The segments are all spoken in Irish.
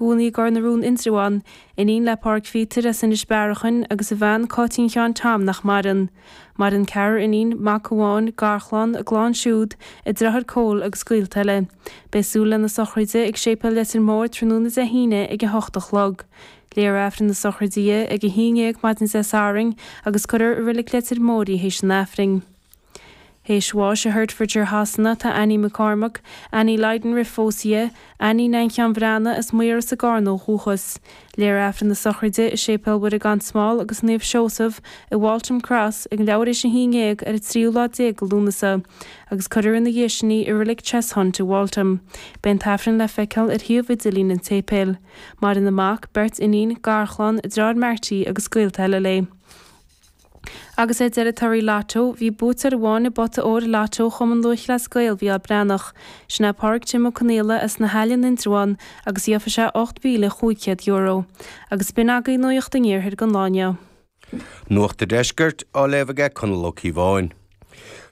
cónaí i gCor na Rón Indreabhán, iníon le Pádraig Phíotair as Inis Bearachain agus a bhean Cáitín Sheáin Tom nach maireann. Maireann ceathrar iníon, mac amháin, garchlann, a gclann siúd, a dreáir Cóil agus gaolta eile. Beidh súil lena sochraide ag Séipéal Leitir Móir tráthnóna Dé hAoine ag a hocht a chlog. Léifear Aifreann na Sochraide di ag a haon dhéag maidin Dé Sathairn agus cuirfear i Reilig Leitir Móir í théis an Aifrinn. Théis bháis i Hertfordshire Shasana tá Annie McCormack, Annie Lydon roimh phósadh di Annie Neain Sheáin Bhreathnaigh, as Maíros i gCarna ó dhúchas. Léifear Aifreann na sochraide i Séipéal Mhuire Gan Smál agus Naomh Seosamh i Waltham Cross ag leathuair théis a haon dhéag ar an tríú lá déag de Lúnasa agus cuirfear ina dhiaidh sin í i Reilig Cheshunt i Waltham. Beidh an tAifreann le feiceáil ar shuíomh idirlín an tséipéil. Maireann a mac, beirt iníon, garchlann, a dreáir Marty agus gaolta eile léi. Agus ar deireadh, torthaí Lotto, bhí buaiteoir amháin i bpota óir Lotto Chumann Lúithchleas Gael Mhícheál Breathnach. Sin é Pádraig Jim Ó Conaola as na hAille in Indreabhán agus gheofa sé €8,500. Agus b'in agaí nuacht an iarthair don lá inniu. Nuacht a' Deiscirt á léamh aige Conall Ó Cíobháin.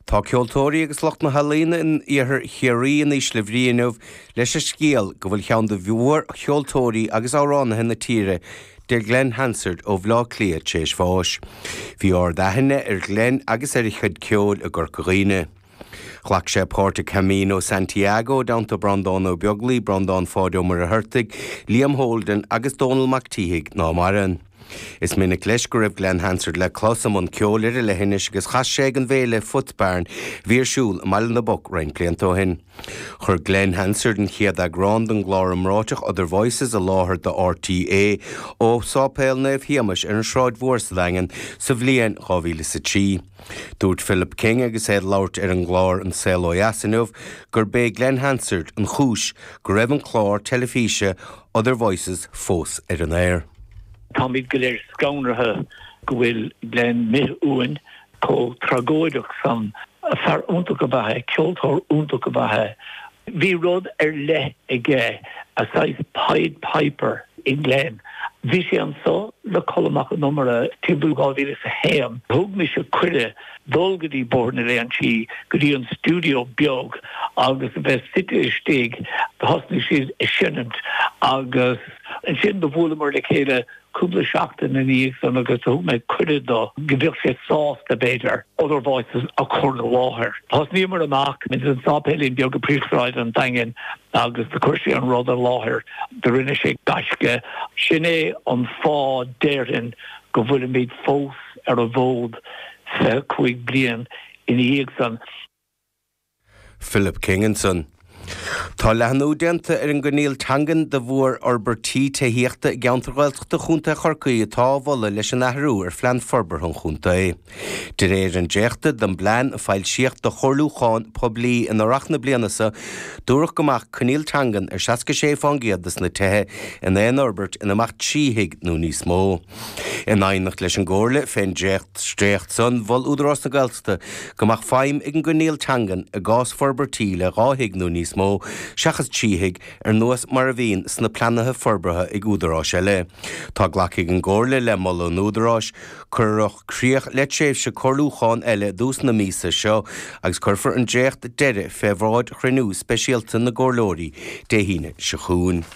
Tá ceoltóirí agus lucht na healaíona in iarthar Chiarraí in ísle bhrí inniu leis an scéal go bhfuil cheann de mhórcheoltóirí agus amhránaithe na tíre, Glen Hansard ó Bhaile Átha Cliath, tar éis bháis. Bhí ard-aithne ar Ghlen agus ar a chuid ceoil i gCorca Dhuibhne. Ghlac sé páirt i gCamino Santiago i dteannta Bhreanndán Ó Beaglaoich, Breandán Pháid Ó Muircheartaigh, Liam Holden agus Dónall Mac an tSíthigh, ná maireann. Is minic leis go raibh Glen Hansard le clos i mbun ceoil ar an leithinis agus chas sé ag an bhféile Footbarn a bhí ar siúl i mBaile na bPoc roinnt blianta ó shin. Chuir Glen Hansard an chéad eagrán den gclár iomráiteach Other Voices i láthair do RTÉ ó Sháipéal Naomh Shéamais ar an Sráid Mhór sa Daingean sa bhliain 2003. Dúirt Philip King agus é ag labhairt ar an gclár An Saol Ó Dheas inniu gurb é Glen Hansard an chúis go raibh an clár teilifíse Other Voices fós ar an aer. Táimid go léir scanraithe go bhfuil Glen imithe uainn chomh tragóideach san. Fear iontach ab ea é, ceoltóir iontach ab ea é. Bhí rud ar leith aige, a saghas Pied Piper i nGlen. Bhí sé anseo le Colm Mac Con Iomaire timpeall 2001. Thug mise cuireadh. Dul go dtí Bóthar na Léinsí, go dtí an stiúideo beag agus a bheith suite istigh, thosnaigh siad ag seinimt agus ansin do bhuaileamar le chéile cúpla seachtain ina dhiaidh san agus thug mé cuireadh dó go bheadh sé sásta b'fhéidir Other Voices a chur i láthair. Thosnaíomar amach ins an sáipéilín beag i bpríomhshráid an Daingin agus do chuir sé an rud i láthair, do rinne sé gaisce. Sin é an fáth déarfainn go bhfuilimid fós. ar an bhfód 25 bliain ina dhiaidh san. Philip King ansan. Tá leathnú déanta ar an gcoinníoll teangan de bharr fhorbairtí tithíochta i gceantair Ghaeltachta Chontae Chorcaí atá á mholadh leis an athrú ar Phlean Forbartha an Chontae. De réir an dréachta den bplean a foilsíodh do chomhairliúchán poiblí in Earrach na bliana seo dúradh go mbeadh coinníoll teangan ar 66 fán gcéad de na tithe in aon fhorbairt ina mbeadh trí thigh nó níos mó. In aighneacht leis an gcomhairle fén dréacht, dréacht san, mhol Údarás na Gaeltachta go mbeadh feidhm ag an gcoinníoll teangan i gcás forbairtí le dhá thigh nó níos mó, seachas trí thigh, ar nós mar a bhíonn sna pleananna forbartha ag údaráis eile. Tá glactha ag an gcomhairle le moladh an Údaráis. Cuireadh críoch le tréimhse comhairliúcháin eile i dtús na míosa seo agus cuirfear an dréacht deiridh fé bhráid chruinniú speisialta na gcomhairleoirí Dé hAoine seo chugainn.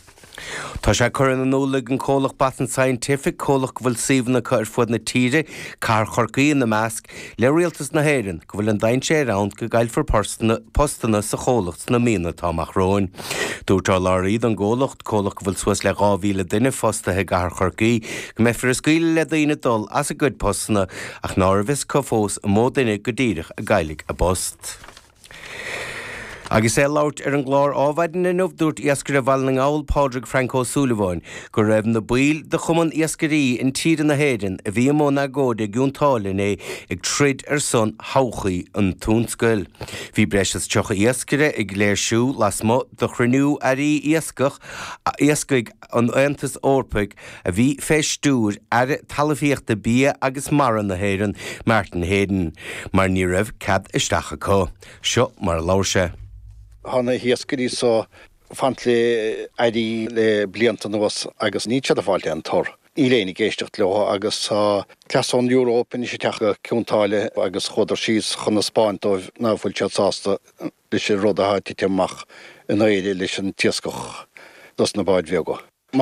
Tá sé curtha in iúl ag an gcomhlacht Boston Scientific, comhlacht a bhfuil suíomhanna acu ar fud na tíre, cathair Chorcaí ina measc, le Rialtas na hÉireann go bhfuil an dainséir ann go gcaillfear postanna sa chomhlacht sna míonna atá amach romhainn. Dúirt urlabhraí don gcomhlacht, comhlacht go bhfuil suas le 2,000 duine fostaithe i gcathair Chorcaí, go mbeifear ag scaoileadh le daoine dul as a gcuid postanna ach nárbh fhios dóibh fós an mó duine go díreach a chaillfidh a bpost. Agus é ag labhairt ar an gclár Ádhmhaidin inniu, dúirt iascaire Bhaile na nGall, Pádraig Frank Ó Súilleabháin, go raibh na baill de Chumann Iascairí Intíre na hÉireann, a bhí i mbun agóide i gCionn tSáile inné, ag troid ar son thodhchaí an tionscail. Bhí breis is 30 iascaire ag léirsiú lasmuigh de chruinniú Airí Iascaigh, an Aontais Eorpaigh, a bhí fé stiúir Aire Talmhaíochta Bia agus Mara na hÉireann, Martin Heydon, mar ní raibh cead isteach acu. Seo mar a labhair sé. Tá na hiascairí so ag fanacht le airí le blianta anuas agus níl siad ag fáilt aon tor. Níl éinne ag éisteacht leo agus tá cleas na hEorpa anois ag teacht go Cionn tSáile agus chuadar síos chun a 'spáint dóibh ná fuil siad sásta. leis an rud atá ag titim amach in Éire leis an iascach dos na báid bheaga.